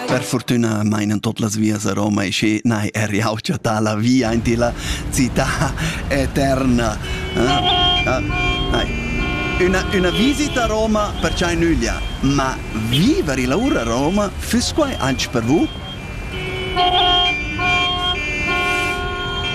Per fortuna meinan tot las vias a Roma e sche nai er jau chattà la via in la città eterna. Eh? Ah, una, una visita a Roma perciai nüglia, ma viver illa ura a Roma füss quai anche per vous?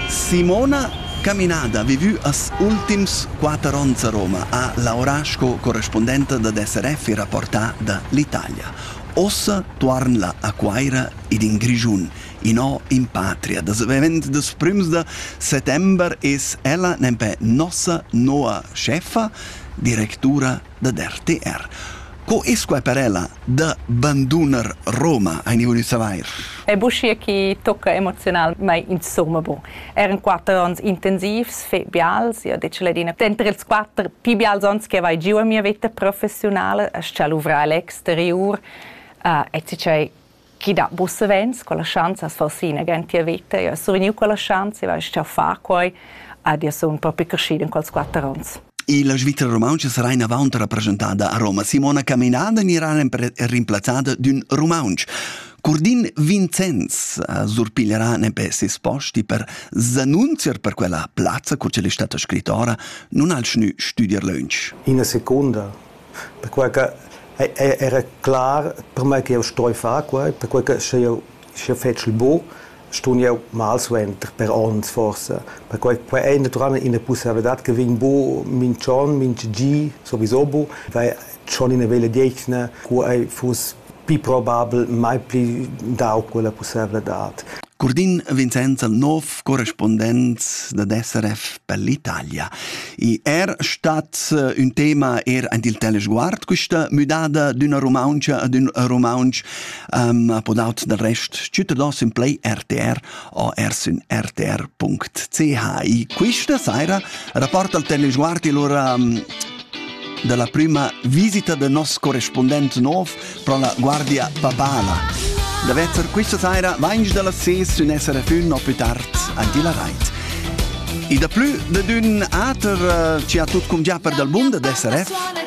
Simona Caminada vivü as ultims quatter ons a Roma, ha laurà sco correspondenta da SRF e rapportà da l'Italia. Ussa tuorn'la a Cuaira ed in Grischun, inò in patria. Da savend dals prüms da settember es ella nempe nossa noua chefa, directura dad RTR. Co es quai per ella da banduner Roma, haini voulu savair? Ed uschia chi tocca emozionalmaing insumma bon. Eir in quatter ons intensivs, fet bials, io det ladina. Denter ils quatter pii bials ons che vai giu a mia veta professiunala, es cha luvrar Alex exteriur e tgei chi dat bu savens quella schanza as far ina grantia vita. Io sun vegniu quella schanza e vai a far quai ed io sun propi crescido in quels quatter ons. E la Svizzera rumantscha sarà inavant rappresentada a Roma. Simona Caminada anirà rimplazzada d'ün rumaunsch. Curdin Vincenz eh, surpiglierà nepè ses posti per s'annunziar per quella plazza, cur che è stata scrittora, non ha schnü studiar lönch. Ina secunda perquai che era clar permei che jeu stoi far quei, perquei che sche jeu sche fetschel bu, stun jeu mal suenter per onns forsa. Perquai quei ei naturalmein ina pussaivladad che vegn bu mintg'onn, mintga gi sowieso bu, weil schon ina veglia detgna, cu ei fuss pli probabel mai pli dau quella pussevladad. Curdin Vincenz al nov correspondent da SRF per l'Italia. I er stat eh, un tema er ein il telesguard questa müdada d'una Rumaunca ad un Rumaunc um, podaut del rest cittadins in play RTR o ers in rtr.ch. E questa saira rapporta il telesguard allora um, dalla prima visita del nos correspondent nov pro la Guardia Papala. Da vetter questa saira vainge dalla ses un essere fun o più tard anche la rait. I da plü de d'un ater eh, ci ha tut cum già per dal bund d'essere